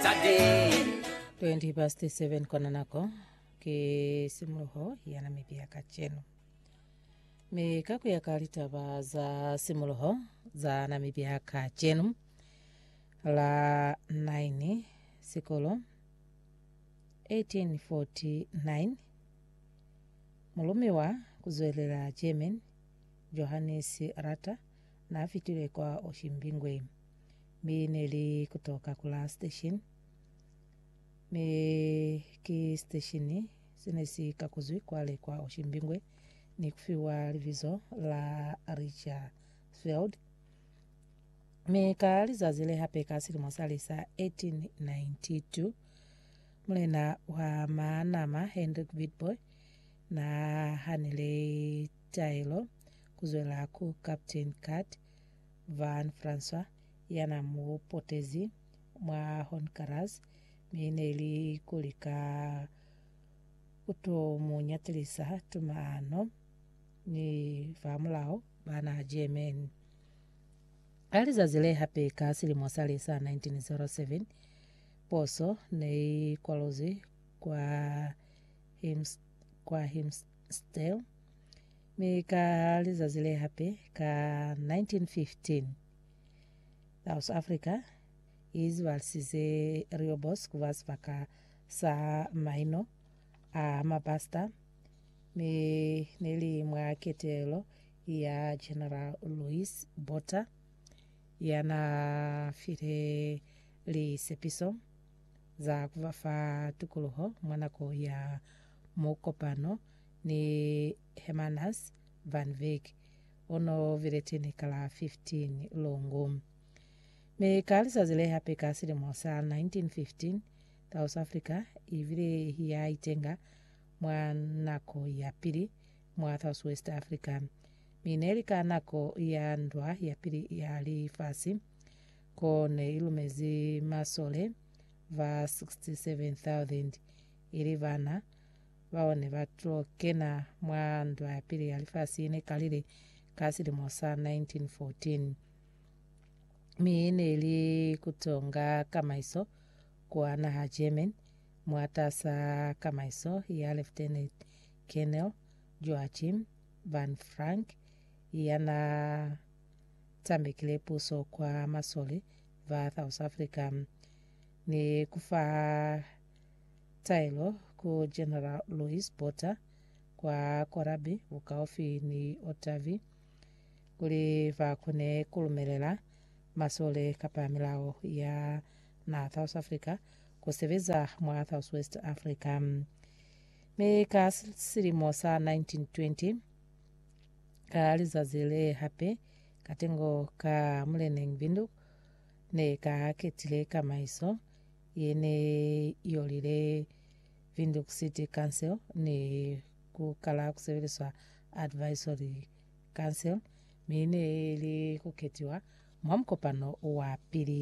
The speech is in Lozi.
20 past 7 kona nako ke simuluho ya namibia kacenu mi ka ku ya ka litaba za simuluho za namibia kacenu la 9 sikolo 1849 mulumi wa kuzwelela german johannes rata na fitile kwa oshimbingwe Mi ne li kutoka ku la station, mi ki station se ne si kakuzwi kwale kwa Oshimbingwe ni kufiwa libizo la Richfield. Mi ka lizazi le hape ka silimo sale sa 1892, mulena wa Manama Hendrik Witbooi na hanile taelo kuzwela ku Captain Cut Van François ya na mu potezi mwa Honkaras mi ne li ku lika ku to mu nyatelisa tumano ni famulaho ba naha Germany. Ka lizazi le hape ka silimo sale sa 1907, poso ne i kwalozwi kwa Himst, kwa Himst, Still, mi ka lizazi le hape ka 1915, South Africa i zibalisize Riobo's ku ba sibaka sa maino a mapasita mi ne li mwa ketelo ya General Louis Botha ya na file lisepiso za ku ba fa tukuluho mwa nako ya Mu kopano ni Hermanus van Wyk, o no vileteni ka la 15 Lungu. Mi ka lizazi le hape ka silimo sa 1915, South Africa i bile ya itenga mwa nako ya pili mwa Southwest Africa, mi ne li ka nako ya ndwa ya pili ya lifasi, ko ne i lumezi masole ba 67,000. ili bana bao ne ba to kena mwa Ndwa ya Pili ya Lifasi ne kalile ka silimo sa 1914. Mi ne li kutonga kamaiso kwa naha German mwatasa kamaiso ya Lieutenant Colonel Joachim Van Frank yana tambekile puso kwa masole ba South Africa ni kufaha Taelo ku General Louis Botha kwa Korabi bukaufi ni Ottavi kuli ba kone ku lumelela masole kapa milao ya na South Africa ku sebeza mwa Southwest Africa. Mi ka silimo sa 1920, ka lizazi le hape, katengo ka Muleneñbinduk ne ka ketile kamaiso ye ne i yolile Windhoek City Council ni ku kala ku sebeliswa Advisory Council mi ne i li ku ketiwa mwa mukopano wa pili.